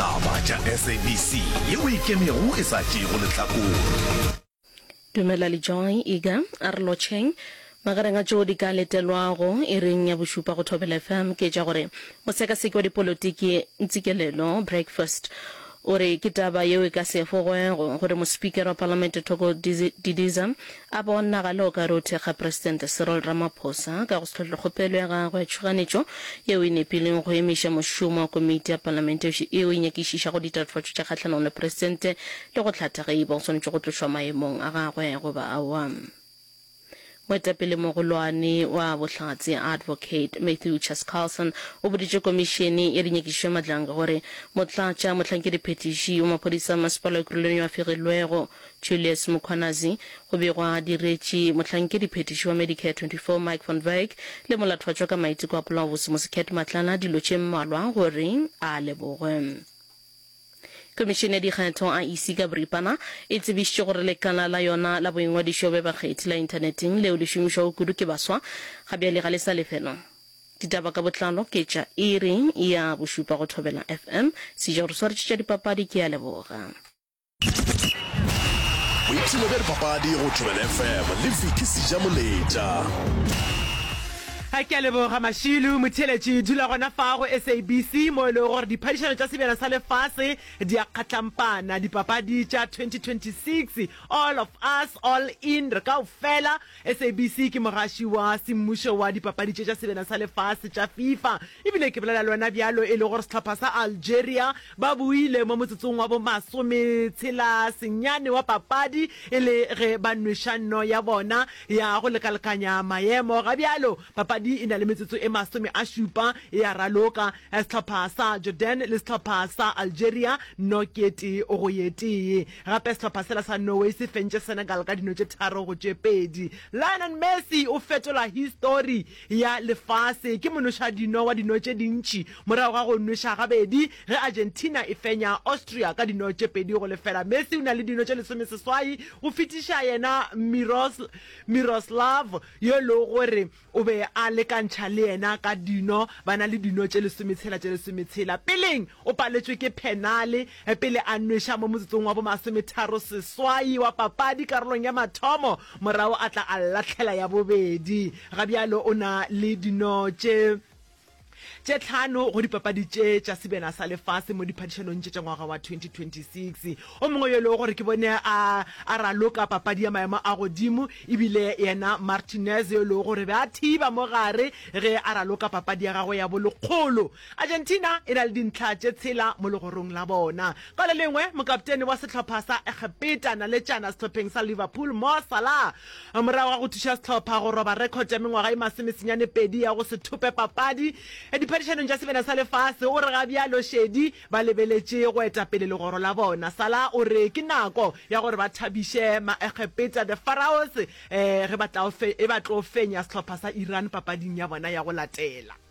Taba tša SABC ye o ikemego e sa tšeego lehlakore. Dumela le Joy, Iga, a re lotšheng. Magareng a tšo di ka letelwago iring ya bošupa go Thobela FM ke tša gore mosekaseki wa dipolotiki Ntsikelelo Breakfast o re ke taba yeo e ka se efogwego gore mospikere wa palamente Thoko Didiza A bonagale o ka re o thekga Presidente Cyril Ramaphosa ka go se hlotle kgopelo ya gagwe ya tšhoganetšo yeo e nepileng go emiša mošomo wa komiti ya Palamente yeo e nyakišišago ditatofatšo tša kgahlanong le Presidente le go hlatha ge e ba o swanetše go tlošwa maemong a gagwe goba aowa. Moetapele-mogolwane wa Bohlatse Advocate Mathew Chas Carlson o boditše Komišene ya Dinyakišišo ya Madlanga gore Motlatša mohlankedi-phethiši wa Maphodisa a Masepala wa Ekurhuleni yo a fegilwego Julius Mkhwanazi, go be gwa diretše mohlankedi-phethiši wa Medicare 24 Mike van Wyk le molathwatšwa ka maiteko a polaobose Mosekhet Matlala dilo tše mmalwa gore a lebogwe. Komišene ya Dikgetho, IEC, ka boripana e tsebišitše gore lekala la yona la boingwadišo bja bakgethi la inthaneteng leo le šomišwago kudu ke baswa ga bjale ga le sa lefelwa. Ditaba ka botlalo ke tša iri ya bošupa go Thobela FM. Seja o re swaretšetša dipapadi, ke a leboga. boipshino bja dipapadi go tšhobela fm le viki seja moletša ga ke a leboga mašilu motheletši dula gona fa go sabc mo e lego gore diphadišano tša sebjana sa lefase di a kgatlampana dipapadi tša 2026 all of us all in re kao fela sabc ke mogaši wa semmušo wa dipapadi tše tša sebjana sa lefase tša fifa E bile ke bolela le wena bjalo e le gore sehlopha sa Algeria ba boile mo motsotsong wa bomasometshela senyane wa papadi e le ge ba nweša nno ya bona ya go lekalekanya maemo. Ga bjalo, papadi e na le metsotso e masome a šupa e a raloka, sehlopha sa Jordan le sehlopha sa Algeria nno ke e tee go ye tee. Gape sehlopha sela sa Norway se fentše Senegal ka dino tše tharo go tše pedi. Lionel Messi o fetola histori. ya lefase ke monošadino wa dino tše dintši morago ga go nweša gabedi ge Argentina e fenya Austria ka dino tše pedi go lefela. Messi o na le dino tše lesomeseswai go fetiša yena Miroslav yo e lego gore o be a lekantšha le yena ka dino. Ba na le dino tše lesometshela tše lesometshela. Peleng O paletšwe ke phenale pele a nweša mo motsotsong wa bomasometharo seswai wa papadi karolong ya mathomo, morago a tla a lahlela ya bobedi. Ga bjalo o na le dino tše tše tlhano go dipapadi tše tša sebjana sa lefase mo diphadišanong tše tša ngwaga wa 2026. O mongwe yo e lego gore ke bone a a raloka papadi ya maemo a godimo e bile yena Martinez yo e lego gore be a thiba mo gare ge a raloka papadi ya gagwe ya bolekgolo. Argentina e na le dintlha tše tshela mo legorong la bona. Ka le lengwe, mokaptene wa sehlopha sa Egepeta naletšana sehlopheng sa Liverpool, Mo Salah, morago ga go thuša sehlopha go roba rekhota ya mengwaga e masomesenyane pedi ya go se thope papadi diphadišanong tša sebena sa lefase, o re ga bjalo šedi ba lebeletše go eta pele legoro la bona. Salah o re ke nako ya gore ba thabiše Maegepeta, The Pharaohs, ge ba tla e ba tlo fenya sehlopha sa Iran papading ya bona ya go latela.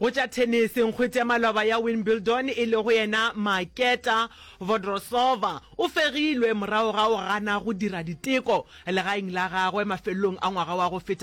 Go tša thenese, nkgwete ya maloba ya Wimbledon e lego yena Marketa Vodrosova o fegilwe morago ga go gana go dira diteko legaeng la gagwe mafelelong a ngwaga wa go feta wa